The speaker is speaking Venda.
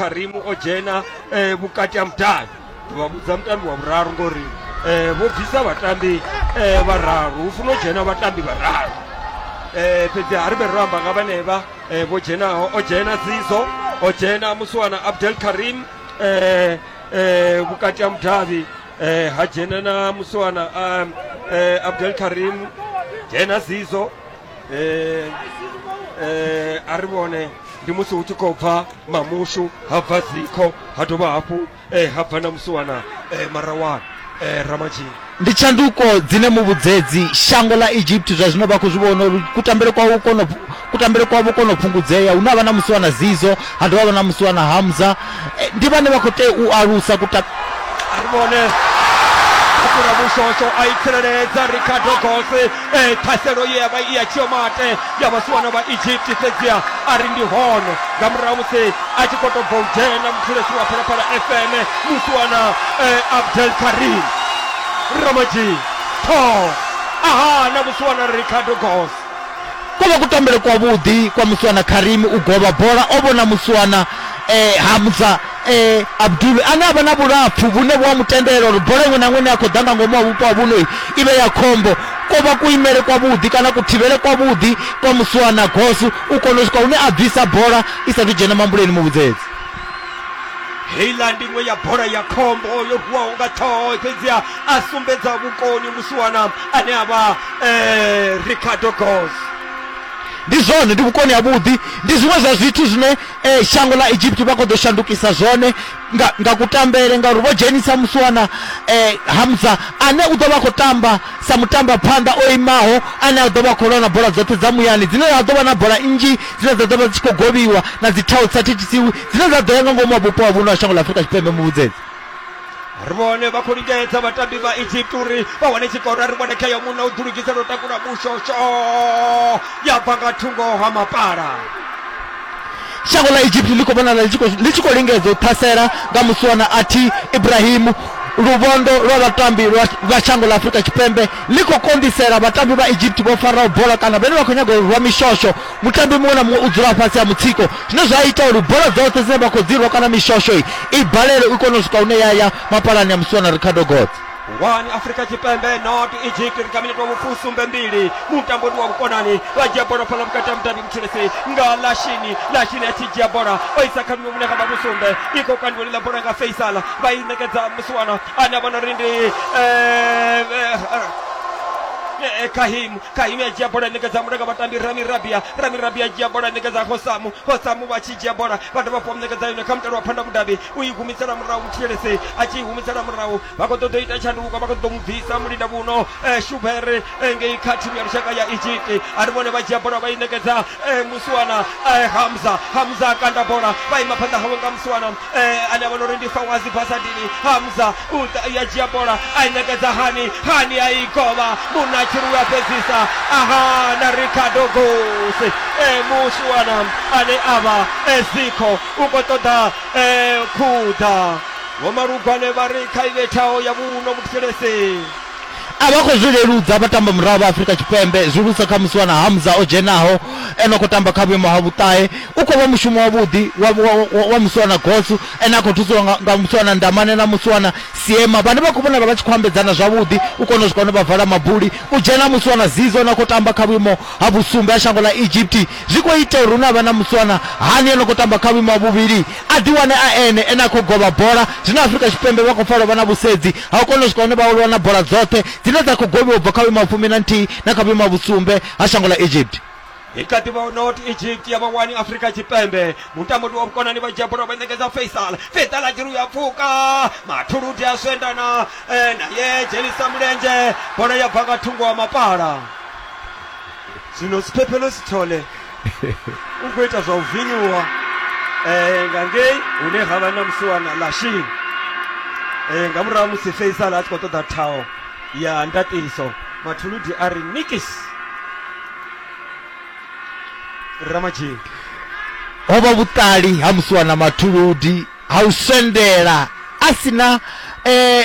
karimu o dzhena eh, vhukati ha mudavhi vha vhudza mutambi wa vhuraru ngori eh, vho bvisa vhatambi eh, vhararu hu funa u dzhena vhatambi vhararu eh, fhedzi ha ri vhe ro amba nga vhanevha eh, vho dzhenaho o dzhena zizo o dzhena musiwana abdel karim eh, eh, vhukati ha mudavhi eh, ha dzhena na musiwana um, eh, abdel karim dzhena zizo eh, eh, a ri vhone ndi musi hu tshi khou bva mamushu ha bva zikho ha dovha hafhu eh, ha bva na musiwana eh, marawana eh, ramatshini ndi tshanduko dzine muvhudzedzi shango ḽa egypt zwa zwino vha khou zwi vhona uri kutambele kwavho kono kutambele kwavho kono fhungudzea hune ha vha na musiwana zizo ha dovha ha vha na musiwana hamza eh, ndi vhane vha khou tea u alusa kuta ri vhone kura mushosho a i tsireledza ricardo gose e ṱhaselo ye ya vha i ya tshiomate ya vhasiwana vha egypt fhedzia a ri ndi hone nga murahu musi a tshi khou tou bva u dzhena muthulesi wa phalaphala fm musiwana eh, abdel karim ramaji tho aha na musiwana ricardo gose ko vha kutambele kwavhuḓi kwa muswana karimi u govha bola o vhona muswana eh, hamza eh, abdul ane a vha na vhulapfu vhune vhu a mu tendela uri bola iṅwe na iṅwe ine ya khou ḓa nga ngomu wa vhupo ha vhuno i vhe ya khombo ko vha kuimele kwavhuḓi kana kuthivhele kwavhuḓi kwa muswana gosu u kona u swika hune a bvisa bola i sathu dzhena mambuleni muvhudzedzi heiland iṅwe ya bola ya khombo yo vuwaho nga ṱhoho fhedziha a sumbedza vhukoni musiwana ane a vha eh, ricardo gos ndi zwone ndi vhukoni ha vhuḓi ndi zwiṅwe zwa zwithu zwine eh, shango ḽa egypt vha khou ḓo shandukisa zwone nga, nga kutambele ngauri vho dzhenisa musiwana eh, hamza ane u ḓo vha khou tamba sa mutamba phanḓa o imaho ane a ḓo vha khou lwa na bola dzoṱhe dza muyani dzine dza ḓo vha na bola nnzhi dzine dza ḓo vha dzi tshi khou govhiwa na dzi thao dzi sa thethisiwi dzine dza ḓo ya nga ngomu ha vhupo ha vhuno ha shango ḽa afurika tshipembe muvhudzedzi ri vhone vha khou lingedza vhatambi vha egypt uri vha wane tshikoro a ri vhone khayo munna u ḓulugisela u takula mushosho ya bva nga thungo ha mapala shango ḽa egypt ḽi khou vhonala ḽi tshi khou- ḽi tshi khou lingedza u ṱhasela nga musiwana athi ibrahimu luvhondo lwa vhatambi lwa- vha shango ḽa afurika tshipembe ḽi khou konḓisela vhatambi vha egypt vho faraho bola kana vhene vha khou nyaga u rwa mishosho Mutambi muṅwe na muṅwe u dzula fhasi ha mutsiko zwine zwa ita uri bola dzoṱhe dzine vha khou dzi rwa kana mishosho i balele u kone u swika hune ya ya mapalani ya musiwana ricardo gods ngwani afurika tshipembe not egypt ri kha minete wa vhufusumbe mbili mutambo ndi wa vhukonani vha dzhia bola fhala vhukati ha mutambi mutshilisi nga lashini lashini a tshi dzhia bola o isa kha miṅwe vhune ha vha vhusumbe i khou kandiwa ḽiḽa bola nga faisala vha i ṋekedza musiwana ane a vhona uri ndi eh, eh, eh, eh, kahimu Kaimi a dzhia bola a ṋekedza muṋe nga vhatambi Rami Rabia. Rami Rabia a dzhia bola a ṋekedza Hosamu. Hosamu vha tshi dzhia bola vha dovha hafhu vha mu ṋekedza yone kha mutale wa Phanda Mudavhi. U i humisela murahu Muthielese a tshi i humisela murahu. Vha khou ṱoḓa u ita tshanduko vha khou ṱoḓa u mu bvisa mulinda vhuno Shubhere ngei kha thimu ya lushaka ya Egypt. A ri vhone vha dzhia bola vha i ṋekedza Muswana Hamza. Hamza a kanda bola vha ima phanḓa hawe nga Muswana. eh, ane a vhona uri ndi fawazi basadini hamza u ḓa ya dzhia bola a i ṋekedza hani hani a i govha munna a tshi ri u a fhedzisa aha na ricardo gos eh, musiwana ane a vha eh, zikho u khou ṱoḓa eh, khuḓa vhomalugwane vha ri kha i vhethaho ya vhuno muthelese A vha khou zwi leludza vhatambamurahu vha Afrika Tshipembe, zwihulusa kha musiwana Hamza o dzhenaho e no khou tamba kha vhuimo ha vhuṱahe. U khou vha mushumo wavhuḓi wa wa wa musiwana Gosu ane a khou thusiwa nga nga musiwana Ndamane na musiwana Siema vhane vha khou vhonala vha tshi khou ambedzana zwavhuḓi u kona u swika hune vha vala mabuli. U dzhena ha musiwana Zizo ane a khou tamba kha vhuimo ha vhusumbe ha shango ḽa Egypt zwi khou ita uri hune ha vha na musiwana Hani a no khou tamba kha vhuimo ha vhuvhili a ḓiwane a ene ane a khou govha bola. Zwino Afrika Tshipembe vha khou pfa lwo vha na vhusedzi Ha u kona u swika hune vha aluwa na bola dzoṱhe dzine dza khou gobiwa u bva kha vhuimo ha fumi na nthihi na kha vhuimo ha vhusumbe ha shango ḽa Egypt. I kha ḓi vha hu not Egypt ya vha wani Afrika Tshipembe. Mutambudi wa vhukonani vha dzhia bola vha ṋekedza Faisal. Faisal a dzhiri u ya pfuka. Mathuludi a swendana eh, naye dzhenisa mulenzhe. Bola ya bva nga thungo ha mapala. zwino siphephelo sithole u khou ita zwa u vinyuwa um nga ngei hune ha vha na musiwana lashini um nga murahu musi faisal a tshi khou ṱoḓa thaho ya ndaṱiso mathuludi a ri nikis ramadzhini ho vha vhuṱali ha musiwana mathuludi ha u swendela a si na um